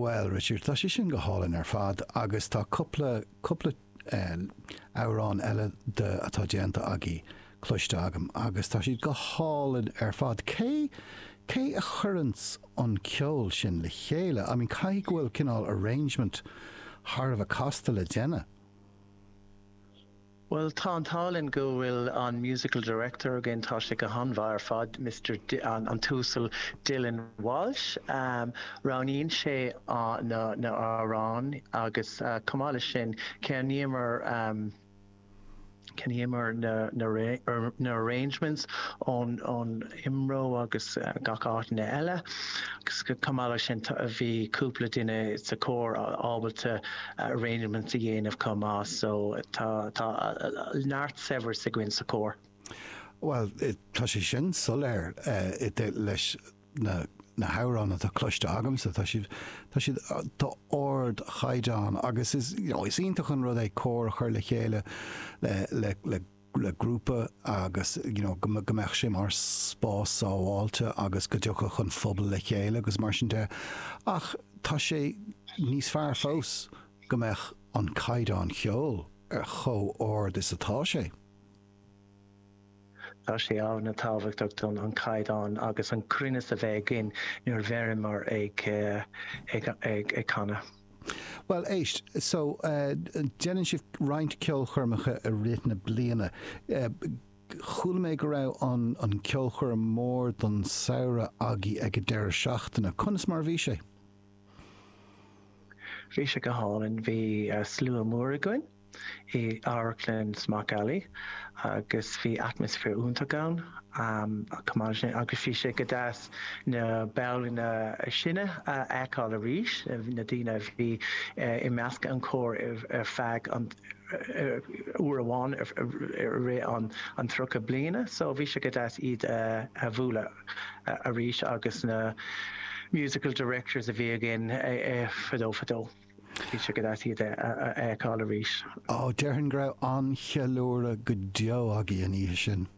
Bhuel Richard, tá sé sin go hálainn ar fad agus tá cúpla, cúpla amhrán eile atá déanta agaí cloiste agam agus tá siad go hálainn ar fad. Cé, cé a chuireann an ceol sin le chéile? I mean caithfidh go bhfuil cineál arrangement thar a bheith casta le déanamh. Bhuel, tá an t-ádh linn go bhfuil an Musical Director againn, tá sé go han-mhaith ar fad, Mister, an tUasal Dylan Walsh. Roghnaíonn sé na h-amhráin agus chomh maith le sin, ceannaíomar, cheannaíomar na arrangements ón, Imro agus gach áiteanna eile. Chomh maith leis sin bhí cúpla duine sa Chór ábalta arrangements a dhéanamh chomh maith so tá neart saibhreas againn sa Chór. Bhuel tá sé sin soiléir leis na hamhráin atá cloiste agamsa. Tá siad tá siad d'ard chaighdeán agus is iontach an rud é cór a chur le chéile le le grúpa agus you know go go mbeadh sé mar spás sábháilte agus go dtiocfadh an phobal le chéile agus mar sin de, ach tá sé níos fearr fós go mbeadh an caighdeán cheoil ar chomh ard is atá sé. Tá sé an-tábhachtach dúinn an caighdeán agus an cruinneas a bheith againn nuair a bheimid ag ag ag ag canadh. Bhuel éist, so déanann sibh roinnt ceolchoirmeacha i rith na bliana. Chuala mé go raibh an an ceolchoirm mór don samhradh agaí ag an deireadh seachtaine. Conas mar a bhí sé? Bhí sé go hálainn. Bhí slua mór againn. i amharclann Smock Alley agus bhí atmaisféar iontach ann agus bhí sé go deas na baill níos sine a fheiceáil arís, na daoine a bhí i measc an chóir ar feadh an uair amháin i rith an tríocha bliana so bhí sé go deas iad a bhualadh arís agus na musical directors a bhí againn fadó fadó. Bhí sé go deas iad a fheiceáil arís. Ó, déarfainn go raibh an-cheiliúradh go deo agaí an oíche sin.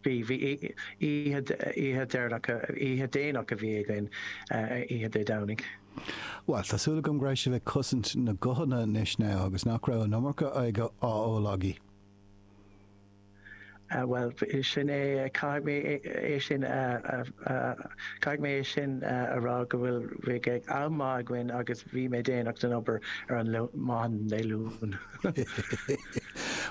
Bhí, bhí. Oíche, oíche deireanach, oíche déanach a bhí againn, Oíche Dé Domhnaigh. Bhuel, tá súil agam go raibh sibh ag cosaint na guthanna anois now agus nach raibh an iomarca aige á ól agaí. Bhuel, b'shin é, caithfidh mé é sin a, caithfidh mé é sin a rá go bhfuil, bhíodh am maith againn agus bhí mé déanach don obair ar maidin Dé Luain.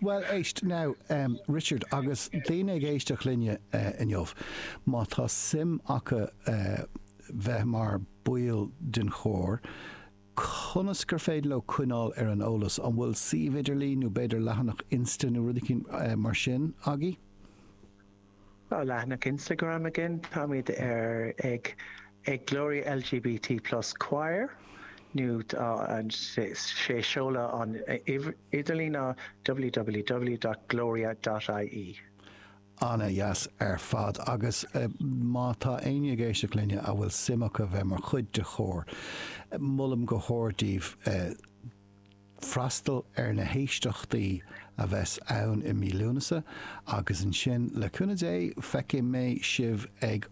Bhuel, éist now, Richard, agus daoine ag éisteacht linne inniu, má tá suim acu bheith mar baill den chór, conas gur féidir leo coinneáil ar an eolas? An bhfuil suíomh idirlín nó b'fhéidir leathanach insta nó rud eicínt mar sin agaí? Tá leathanach Instagram againn, táimid ar ag ag Gloria LGBT plus choir nó tá an sé sé seoladh an uimh idirlín ná www.gloria.ie. ana dheas ar fad agus má tá éinne ag éisteacht linne a bhfuil suim acu bheith mar chuid de chór, molaim go hard daoibh freastal ar na héisteachtaí a bheas ann i mí Lúnasa agus ansin le cúnamh Dé feicfidh mé sibh ag